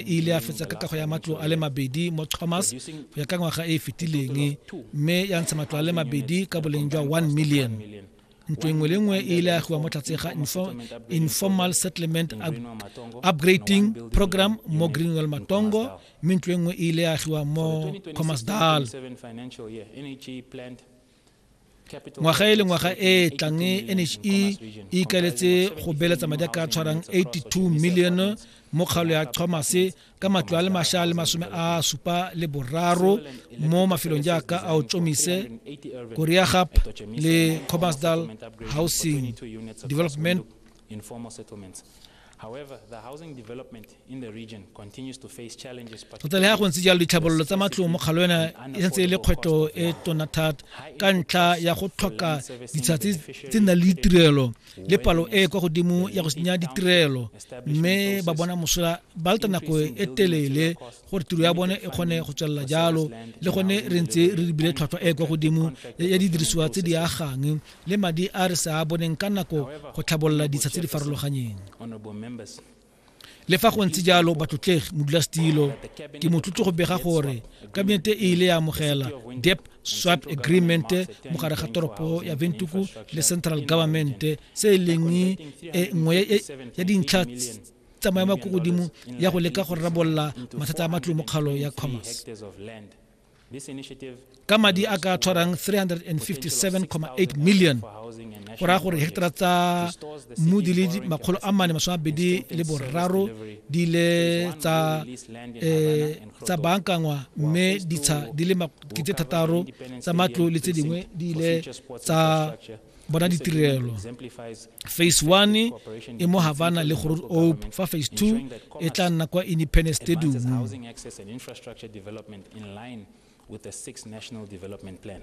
e ile ya fetsa ka kago ya matlo a le mabedi mo thomas go ya ka ngwaga e e fetileng mme ya ntsha matlo a le mabedi ka boleng jwa 1 million ntlo engwe le nngwe e ile agiwa mo tlhatse ga informal settlement upgrading program mo greenwell matongo mme ntlo engwe e ile agiwa mo commerce dal ngwaga e le ngwaga e e tlang nhe e ikaeletse go beeletsa madi a ka tshwarang 82 milione mo kgaolo ya chomase ka matlo a le masha le masome a supa le boraro mo mafelong jaaka a o tsomise koreagap le comasdal housing development tota le ga go ntse jalo ditlhabololo tsa matlong mo kgalwena e santse e le kgwetlho e tona thata ka ntlha ya go tlhoka ditsha tse nang le ditirelo le palo e kwa godimo ya go senya ditirelo mme ba bona mosola ba leta nako e telele gore tiro ya bone e kgone go tswelela jalo le gone re ntse re lebile tlhwatlhwa e kwa godimo ya didirisiwa tse di agang le madi a re sa a boneng ka nako go tlhabolola ditsha tse di farologanyeng. Le fa go ntse jalo batlotlegi modulasetilo ke motlotlo go bega gore kabinete e ile ya amogela dep swap agreement mo gare ga toropo ya ventuku le central government se e leng e nngwe ya dintlha tsa maemo a ko godimo ya go leka go rarabolola mathata a matlo mo kgalo ya commerce ka madi a ka tshwarang 357,8 million go raya gore heketara tsa mmu di le makgolo a mane masome abedi le boraro di ile tsa eh, tsa bankangwa mme ditsha di le makete thataro tsa matlo le tse dingwe di ile tsa bona ditirelo phase one e mo havana le growth ope fa phase two e tla nna kwa independence stadium with the six national development plan